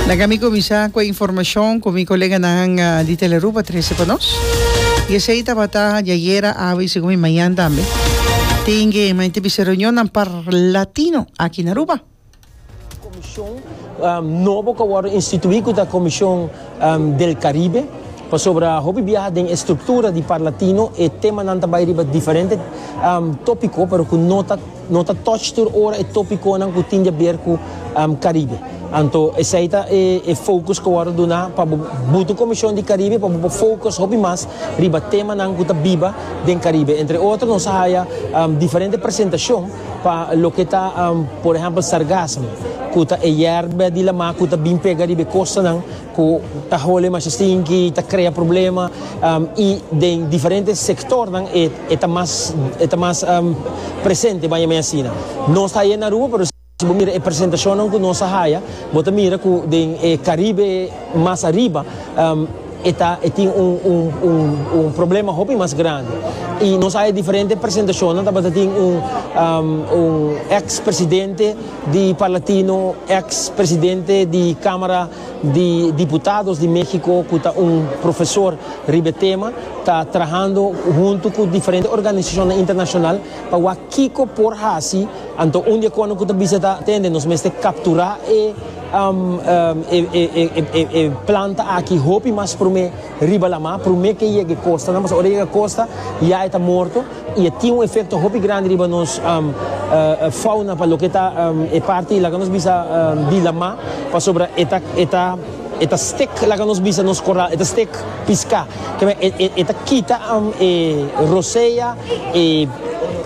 Laga mi kuminsá ku e informashon ku mi koleganan di Telearuba trese pa nos. I esei tabata diayera, awe i segun mi mañan tambe. Tin ke mañanter bisa reunionnan par Latino aki na Aruba. Komishon nobo ku a wòrdu instituí ku ta Komishon del Karibe, pasobra hopi biaha den e struktura di par Latino e temanan ta bai riba diferente tópiko pero ku no ta. No ta touch tur ora e topiconan cu tin diaber cu Caribe. Anto esey ta e focus cu wordo duna pa bo butu Comision di Caribe pa bo por focus hopi mas riba temanan cu ta biba den Caribe. Entre otro nos a haya diferente presentacion pa loke ta por ehempel sargasmo cu ta e yerba di lamar cu ta bin pega riba e costanan. cu ta hole masha stinky, ta crea problema y den diferente sectornan e ta mas e ta mas presente baña mi asina. Nos ta haya na Aruba pero si bo mira e presentacionnan cu nos a haya bo ta mira cu den e Caribe mas ariba e ta e tin un un un un problema hopi mas grandi y nos a haya diferente presentacionnan tabata tin un un ex presidente di Parlatino, ex presidente di camara. di diputados di Mexico cu ta un profesor riba e tema ta trahando hunto cu diferente organisacionnan internacional pa wak kico por haci, anto un di e cono cu ta bisa ta tende nos mester captura e e planta aki hopi mas prome riba la mar, prome ke yega e costa nan, pasobra ora yega costa ya e ta morto. y e tin un efecto hopi grandi riba nos fauna pa loke ta e parti laga nos bisa di lama pasobra e ta e ta e ta stek laga nos bisa nos coral e ta stek pisca keme e ta kita e rosea e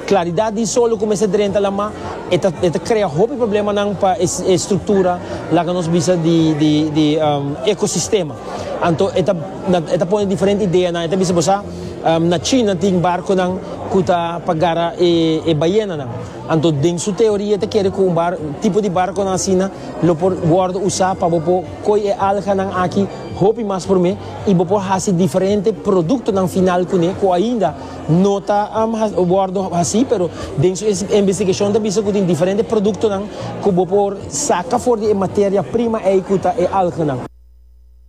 claridad di sol lo cu mester drenta lama e ta e ta crea hopi problemanan pa e structura laga nos bisa di di di ecosistema anto e ta e ta pone diferente ideanan e ta bisa bo sa. Na China tin barconan cu ta pa gara e bayenanan. Anto den su teoria e ta kere cu un tipo di barconan asina lo por wordo usa pa bo por coy e alganan aki hopi mas prome y bo por haci diferente productonan final cu ne cu ainda no ta wordo haci pero den su investigacion ta bisa cu tin diferente productonan cu bo por saca for di e materia prima ey cu ta e alganan.